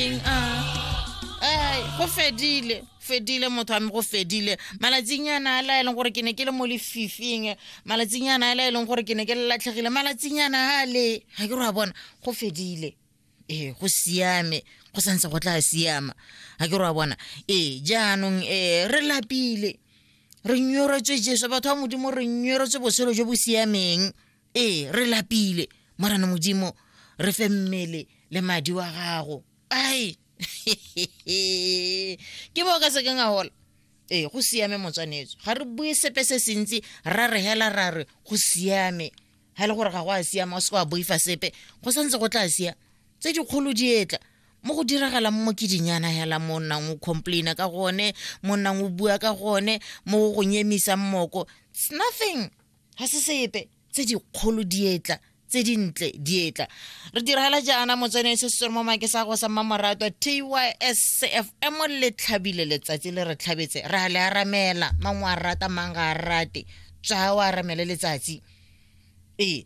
eng a ai go fedile fedile motho wa me go fedile malatsinyana a laeleng gore ke ne ke le mo lefifing malatsinyana a laeleng gore ke ne ke le latlhegile malatsinyana a le ga ke re wa bona go fedile ee go siame go santse go tla siama ga ke re wa bona ee jaanong um re lapile re nyoretswe jesu batho ba modimo re nyoretswe botshelo jo bo siameng ee re lapile morana modimo re fe mmele le madi wa gago ai ke bo ka sekeng a gola ee go siame motswanetso ga re bue sepe se sentsi ra re hela ra re go siame ga e le gore ga go a siama o se wa boifa sepe go santse go tla sia tse dikgolo di etla mo go diragalang mo ke dinyana hela mo nnang o complaina ka gone mo nnang o bua ka gone mo go nyemisa mmoko it's nothing ga se sepe tse dikgolo dietla tse dintle dietla re diragala jaana motsene se se mo make sa go sa mmamoratwa tyscfm le tlhabile letsatsi le re tlhabetse ra le aramela mang wa rata mang ga a rate tswa o aramele letsatsi ee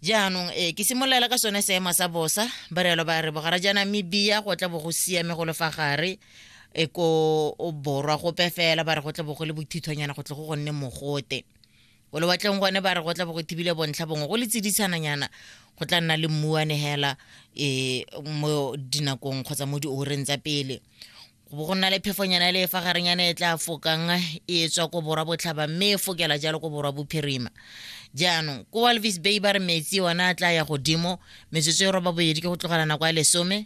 jaanong ee ke simololela ka sone seemo sa bosa barelo ba re bogara jaana mebia go tla bo go siame go lefa gare e ko borwa gope fela ba re go tle bo go le bothithonyana go tle go gonne mogote o lewatleng gone ba re go tla bo go thibile bontlha bongwe go le tsiditshananyana go tla nna le mmuane hela um mo dinakong kgotsa mo dioreng tsa pele go bo go nna le phefonyana le fa garenyana e tla fokang e tswa ko borwa botlhaba mme e fokela jalo ko borwa bophirima jaanong ko walvis bay ba re metsi ona a tla ya godimo metsotso e roba boedi ke go tlogela nako ya lesome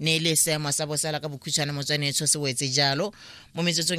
ne e le seemo sa bosala ka bokhutshwane motswanetsho se wetse jalo mo metsotsong